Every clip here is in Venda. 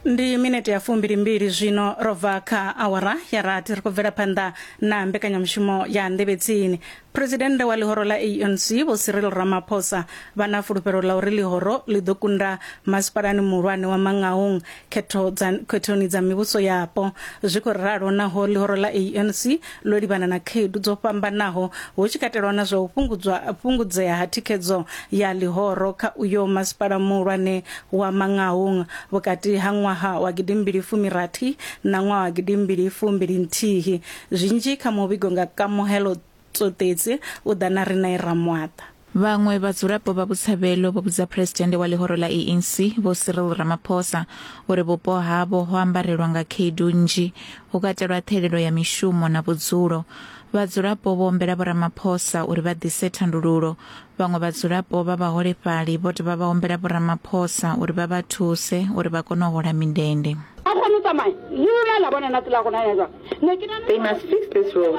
ndi minete ya fumbilimbili zwino ro bva kha awara ya rathi ri khou bvela phanḓa na mbekanyamushumo ya nḓevhe tsini phuresidennde wa ḽihoro ḽa anc vho cyril ramaphosa vha na fulufhelo ḽa uri ḽihoro ḽi ḓo kunda masipalani muhulwane wa mangaung khethoni dza mivhuso yapo zwi khou ralo naho ḽihoro ḽa anc ḽo livhana na khaedu dzo fhambanaho hu tshi katelwa na zwa u fhungudzwa fhungudzea ha thikhedzo ya ḽihoro kha uyo masipala muhulwane wa Mangaung vhukati ha ṅwaha wa gidimbili fumirathi na ṅwaha wa gidimbili fumbili nthihi zwinzhi kha muvhigo nga kamuhelo tsoṱedzi u ḓa na Rinae Ramwaṱa. Vhaṅwe vhadzulapo vha Botshabelo vho vhudza phresidennde wa ḽihoro ḽa ANC Vho Cyril Ramaphosa uri vhupo havho ho ambarelwa nga khaedu nnzhi, hu katelwa ṱhelelo ya mishumo na vhudzulo. Vhadzulapo vho ombela Vho Ramaphosa uri vha ḓise thandululo. Vhaṅwe vhadzulapo vha vhaholefhali vho dovha vha ombela Vho Ramaphosa uri vha vha thuse uri vha kone u hola mindende. They must fix this road.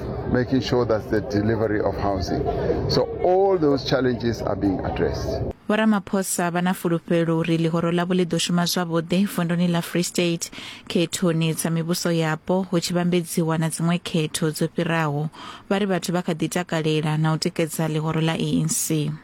making sure that the delivery of housing. So all those challenges are being addressed. vho ramaphosa vha na fulufhelo uri ḽihoro ḽavho ḽi ḓo shuma zwavhuḓi vunduni ḽa free state khethoni dza mivhuso yapo hu tshi vhambedziwa na dziṅwe khetho dzo fhiraho vha ri vhathu vha kha ḓi takalela na u tikedza ḽihoro ḽa anc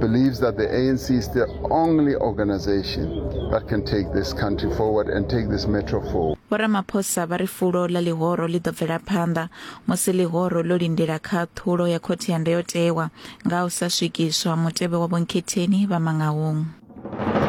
believes that the ANC is the only organization that can take this country forward and take this metro forward. Vho Ramaphosa vha ri fulo ḽa ḽihoro ḽi ḓo bvela phanḓa musi ḽihoro ḽo lindela khaṱhulo ya khothe ya ndayotewa nga u sa swikiswa mutevhe wa vhonkhetheni vha Mangaung.